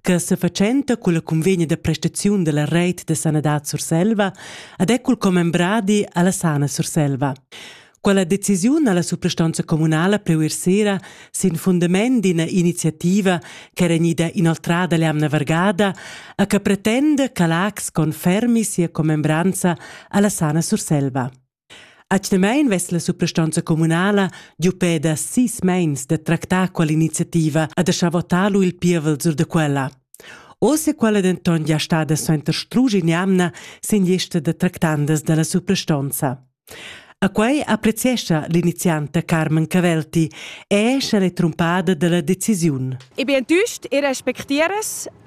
che sefatschenta culla cunvegna da prestaziun della reit de sanadad Surselva ad è cul commembradi alla sana Surselva. Quella decisiun alla suprastanza comunala preuer sera sin fundament d'ina iniziativa che era gnida inoltrada l'amna vargada a che pretende che l'AX confermi sia commembranza alla sana Surselva. Atgnamein vess la suprastonza communala giu pe da sis meins da tractar quell'iniziativa e da schavotar lu il pievel sur da quella. Oz è quella denton gia stada suenter strusch in'jamna sin lista da tractandas dalla suprastonza. A quei appreziescha l'inizianta Carmen Cavelti e è sche l'è trumpada dalla decisiun. Ich bin enttäuscht, ich respektiere es,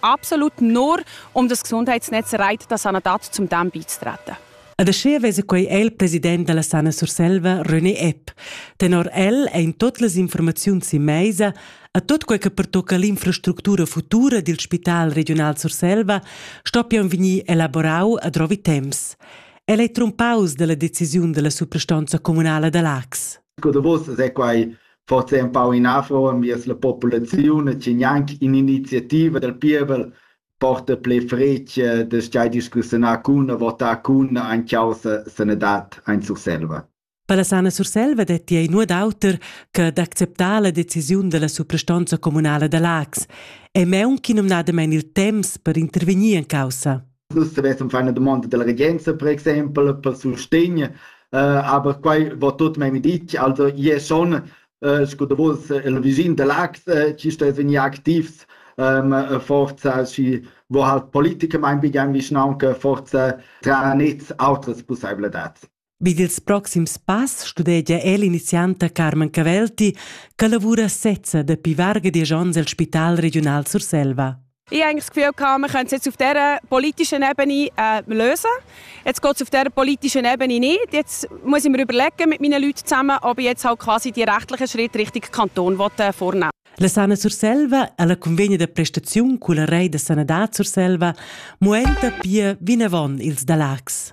absolut nur um das Gesundheitsnetz reit da sanadad zum Darm beizutreten. Ed aschia vesa quei el president dalla Sana Surselva, René Epp. Tenor el ein tut las informaziuns in meisa a tot quei che pertocca l'infrastructura futura dil Spital regional Surselva stoppian vegnir elaborau a drovi temps. El ei trumpaus dalla decisiun dalla suprastanza communala da Lax. Sco davos se quai forsa empau inafro enviers la populaziun e che gnanc in'iniziativa dal pievel porta pli fretg da schai discussiunar cun e votar cun en causa sanadad en Surselva. Per la Sana Surselva detti ei nuot auter che d'acceptar la decisiun della suprastonza communala da Lax e meun chi numnadamein il temps per intervegnir en caussa. Nus stuvessem far una domanda della regenza, per exempel, per sustegn, uh, aber quai va tot memia ditg, also io schon, uh, sco da vos, il vischin de Lax, uh, ci stess vegnir activs um, forza și wo halt Politiker mein begann vischnaunca forza tra nets outras pusseibladads. Vid ils proxims pass studegia el inizianta Carmen Cavelti che lavura sezza dapi varga diesch onns el Spital regiunal Surselva. Ich habe das Gefühl, wir können es jetzt auf dieser politischen Ebene äh, lösen. Jetzt geht es auf dieser politischen Ebene nicht. Jetzt muss ich mir überlegen mit meinen Leuten zusammen, ob ich jetzt halt quasi die rechtlichen Schritte Richtung Kanton äh, vornehmen La Sana Surselva ha la convegna da prestaziun culla rei da sanadad Surselva muenta pia vinavon ils da Lax.